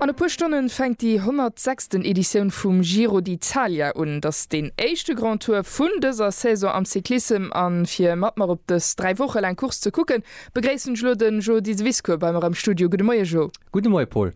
An e puer Stonne fänkt déi 106. Editioun vum Giro d'Italia un. Et ass deen éischte Grand Tour vun dëser Saison am Cyclissem. A fir mat mer op dës dräi Woche laang Course ze kucken, begréissen ech elo de Jo Diseviscourt bei mer am Studio. Gudde Moie Jo. Gudde Moie Paul.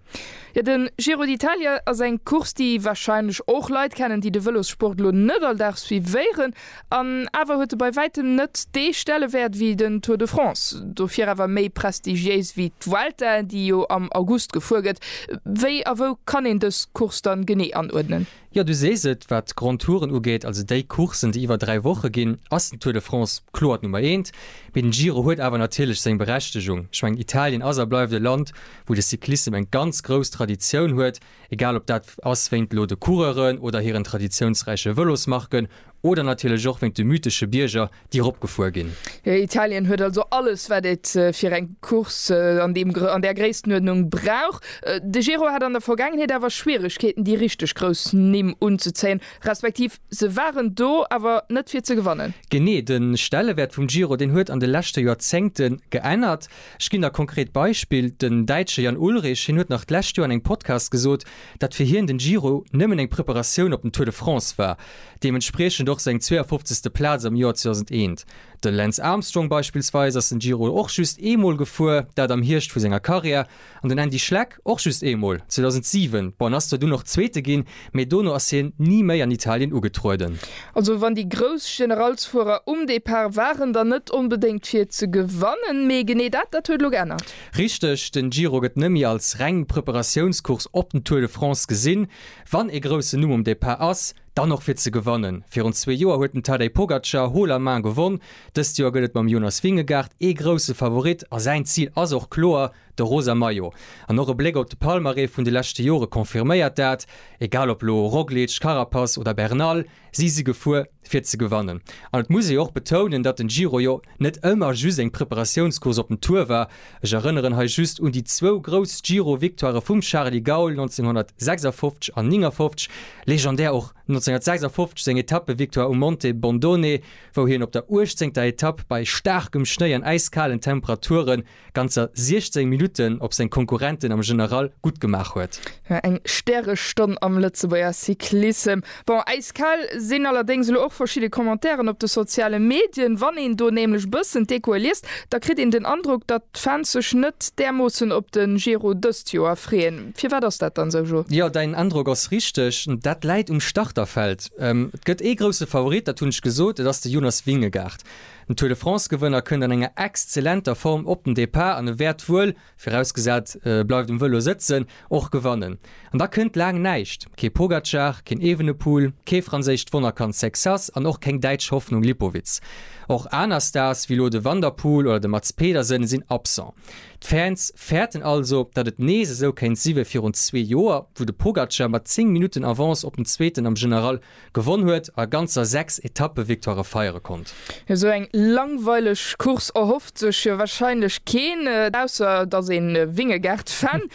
Jo, de Giro d'Italia ass eng Course, déi warscheinlech och Leit kennen, déi de Vëlossport elo net all Dag suivéieren. An awer huet e bei wäitem net dee Stellewäert wéi den Tour de France, dofir awer méi prestigiéis wéi d'Vuelta, déi jo am August gefuer gëtt. Wéi a wou kann een dës Course dann genee anuerdnen? Jo, du sees et, wat d'Grands Touren ugeet, also déi Courssen, déi iwwer dräi Woche ginn, ass den Tour de France kloer d'Nummer eent. Mee den Giro huet awer natierlech seng Berechtegung. Ech mengen, Italien ass a bleift e Land, wou de Cyclissem eng ganz grouss Traditioun huet. Egal ob dat ass wéint elo de Coureuren oder hiren traditiounsräiche Vëlosmarken oder natierlech och wéint de mythesche Bierger, déi eropgefuer ginn. Italien huet also alles, wat et fir eng Course an deem, an där Gréisstenuerdnung brauch. De Giro hat an der Vergaangenheet awer Schwieregkeeten, déi richteg grouss Nimm unzezéien, respektiv se waren do, awer net fir ze gewannen. Genee, de Stellewäert vum Giro, deen huet an de leschte Joerzéngte geännert. Ech ginn der konkret Beispill, den Däitsche Jan Ullrich, hien huet nach d'lescht Joer an engem Podcast gesot, datt fir hien den Giro nëmmen eng Preparatioun op den Tour de France war, deementspriechend och seng 52. Plaz am Joer 2001. De Lance Armstrong beispillsweis ass den Giro och just eemol gefuer, dat am Hierscht vu senger Karriär, an den Andy Schleck, Och just eemol, 2007, bon, ass zwar dunn och Zweete ginn, mee dono ass hien ni méi an Italien ugetrueden. Also wann déi grouss Generalsfuerer um Depart waren, dann net onbedéngt fir ze gewannen, mee genee dat, dat huet elo geännert. Richteg, den Giro gëtt nëmmi als reng Preparatiounscourse op den Tour de France gesinn. Wann ee groussen Numm um Depart ass, dann och fir ze gewannen. Virun zwee Joer huet den Tadej Pogacar haut la main gewonn, dëst Joer gëtt et mam Jonas Vingegaard ee grousse Favorit a säin Zil ass och kloer, De rosa Maillot an och e Bléck op de Palmarès vun de leschte Jore confirméiert dat. Egal op elo Roglic, Carapaz oder Bernal, si si gefuer fir ze gewannen. An et muss ee jo och betounen, datt den Giro jo net ëmmer just eng Preparatiounscourse op den Tour war. Ech erënneren hei just un déi zwou grouss Giro-Victoirë vum Charly Gaul 1956 an 59, legendär och 1956 seng Etappe-Victoire um Monte Bondone, wou hien op der uechtzéngter Etapp bei staarkem Schnéi an äiskalen Temperaturen, ganzer 16 Minutten op seng Konkurrenten am General gutt gemaach huet. Jo, eng Stärestonn am Lëtzebuerger Cyclissem. Bon, äiskal sinn allerdéngs elo och verschidde Commentairen op de soziale Medien. Wann een do nämlech bëssen d'Echoe liest, da kritt een den Androck, datt d'Fans sech net därmoossen op de Giro dëst Joer freeën. Firwat ass dat dann esou, Jo? Jo, däin Androck ass richteg. Dat läit um Starterfeld. Et gëtt ee grousse Favorit, dat hunn ech gesot, et ass de Jonas Vingegaard. Den Tour de France-Gewënner kënnt an enger exzellenter Form op den Depart an e wäert wuel, virausgesat e bleift um Vëlo sëtzen, och gewannen. An da kënnt laang näischt, kee Pogacar, keen Evenepoel, kee franséischt Wonnerkand Sexas an och keng däitsch Hoffnung Lipowitz. Och aner Stars wéi elo de Van der Poel oder de Mads Pedersen sinn absent. D'Fans fäerten also, datt et nees esou kéint si wéi virun zwee Joer, wou de Pogacar mat 10 Minutten Avance op den Zweeten am General Gewonn huet a ganzer 6 Etappe-Victoirë feiere konnt. Esou eng langweileg Course erhofft sech jo wahrscheinlech keen, ausser et ass een Vingegaard-Fan.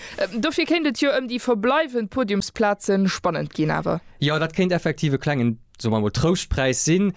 Dofir kéint et jo ëm déi verbleiwend Podiumsplaze spannend ginn. Awer. Jo, dat kéint effektiv e klengen, soe mer emol, Trouschtpräis sinn.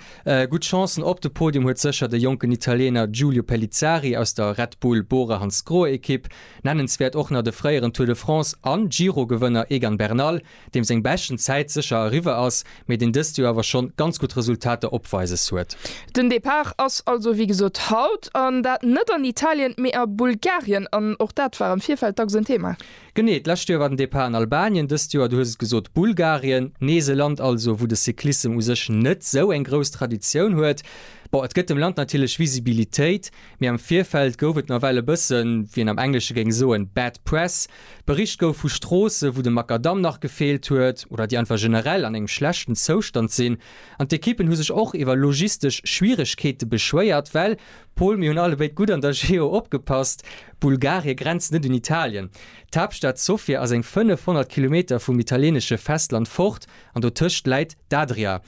Gutt Chancen op de Podium huet sécher de jonken Italiener Giulio Pellizzari aus der Red Bull Bora-Hansgrohe-Ekipp. Nennenswäert och nach de fréieren Tour de France an Giro-Gewënner Egan Bernal, deem seng beschten Zäit sécher eriwwer ass, mee deen dëst Joer awer schonn ganz gutt Resultater opweises huet. Den Depart ass also wéi gesot haut, an dat net an Italien, mee a Bulgarien, an och dat war am Virfeld dacks en Thema. Genee, d'lescht Joer war den Depart an Albanien, dëst Joer, du hues et gesot, Bulgarien, nees e Land also, wou de Cyclissem u sech net esou eng grouss Traditioun huet. Bon, et gëtt dem Land natierlech Visibilitéit, mee am Virfeld gouf et nawell e bëssen, wéi een am Englesche géing soen, bad press, Bericht gouf vu Stroosse wou de Makadamm nach gefeelt huet oder déi einfach generell an engem schlechten Zoustand sinn. An d'Ekippen hu sech och iwwer logistesch Schwieregkeete beschwéiert, well, Pol, mir hunn allebéid gutt an der Geo opgepasst, Bulgarie grenzt net un Italien. D'Haaptstad Sofia ass eng 500 Kilometer vum italienesche Festland fort an dotëscht läit d'Adria.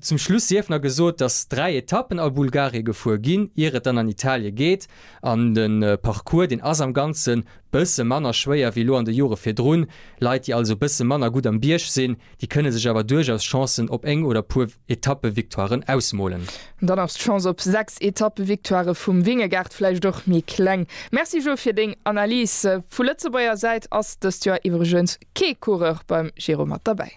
Zum Schluss sief nach gesot, datt 3 Etappen a Bulgarie gefuer ginn, ier et dann an Italie geet. An de Parcours, deen ass am Ganze bësse manner schwéier wéi elo an de Jore virdrun. Leit, déi also bësse manner gutt am Bierg sinn, déi kënne sech awer duerchaus Chancen op eng oder puer Etappe-Victoiren ausmolen. Dann ass d'Chance op sechs Etappe-Victoire vum Vingegaard vläicht och méi kleng. Merci Jo fir deng Analys. Vu Lëtzebuerger Säit ass dëst Joer iwwregens kee Coureur beim Giro mat derbäi.